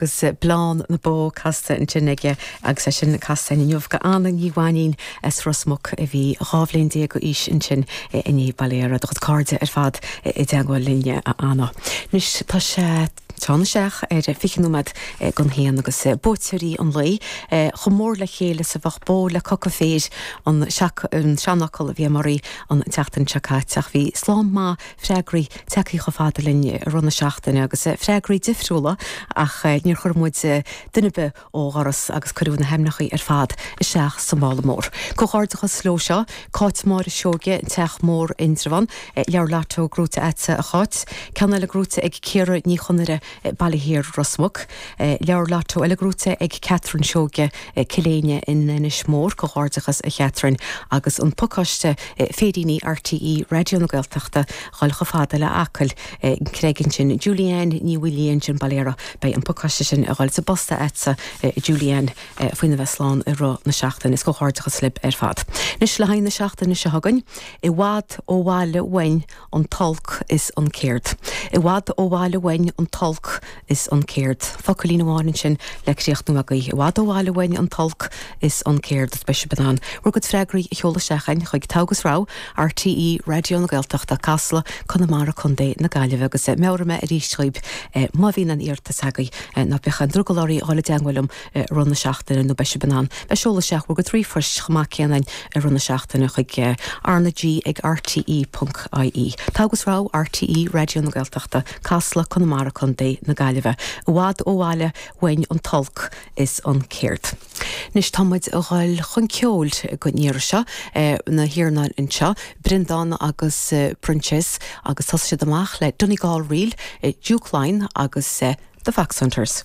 agus bleán na bó casta ansin aige agus é sin casta againn inniu go Anna Ní Mhainín as Ros Muc a bhí dhá bhliain déag d'aois ansin inniu. Bail ó Dhia ort do chuid cairde ar fad i dteagmháil linn a Anna. Anois tá sé tarraingt isteach ar 20 nóiméad don haon agus buaiteoirí an lae chomh mór le chéile is a bheadh bó le coca féir an seanfhocal a bhí amuigh oraibh an tseachtain seo caite ach bhí slám maith freagraí tagthaí chomh fada linn i rith na seachtaine agus freagraí difriúla ach níor chuir muid duine ar bith ó dhoras agus cuireadh na haimneachaí ar fad isteach sa mála mór. Comhghairdeachas leo seo, Cáit Máire Seoige, an Teach Mór, Indreabhán. Leabhar Lotto gnóite a'dsa a Cháit. Ceann eile gnóite ag Ciara Ní Chonaire Baile Thiar Ros Muc. Leabhar Lotto eile gnóite ag Catherine Seoige, Cill Éinne in Inis Mór, Comhghairdeachas a Chatherine, agus An Pacáiste Féiríní RTÉ Raidió na Gaeltachta, Dhul Chomh Fada le hAcaill, An Creagán Ansin. Julianne Ní Uidhilín sin, bail ó Dhia ort, Beidh an pacáiste sin ag dhul sa bpost a'dsa a Julianne faoina bheith slán i rith na seachtaine. Is comhghairdeachas libh ar fad. Anois le haghaidh na seachtaine seo chugainn. I bhfad ó bhaile uainn. an t-olc is an céard. I bhfad ó bhaile uainn an t-olc is an céard. Focailín amháin ansin le críochnú agaí. I bhfad ó bhaile uainn an t-olc is an céard. Is beidh sibh in ann bhur gcuid freagraí a sheoladh isteach againn chuig Togha agus Rogha, RTÉ Raidió na Gaeltachta, Casla, Conamara, Co na Gaillimhe agus meabhróidh mé arís dhaoibh má bhíonn aon iarratas agaí ná bíodh aon drogall oraí dul i dteangmháil liom i rith na seachtaine nó beidh sibh in ann bheith ag seoladh isteach bhur gcuid ríomhphoist chomh maith céanna i rith na seachtaine chuig RnaG ag RTÉ ponc IE. Togha agus Rogha RTÉ Raidió na Gaeltachta, Casla, Conamara, Co. na Gaillimhe i bhfad ó bhaile uainn an t-olc is an céard. Anois tá muid a dhul chun ceoil don iarraidh seo, na Hernons anseo, Breandán agus Proinsias agus thosaigh siad amach le Donegal Reel, Duke of Leinster agus The Foxhunters.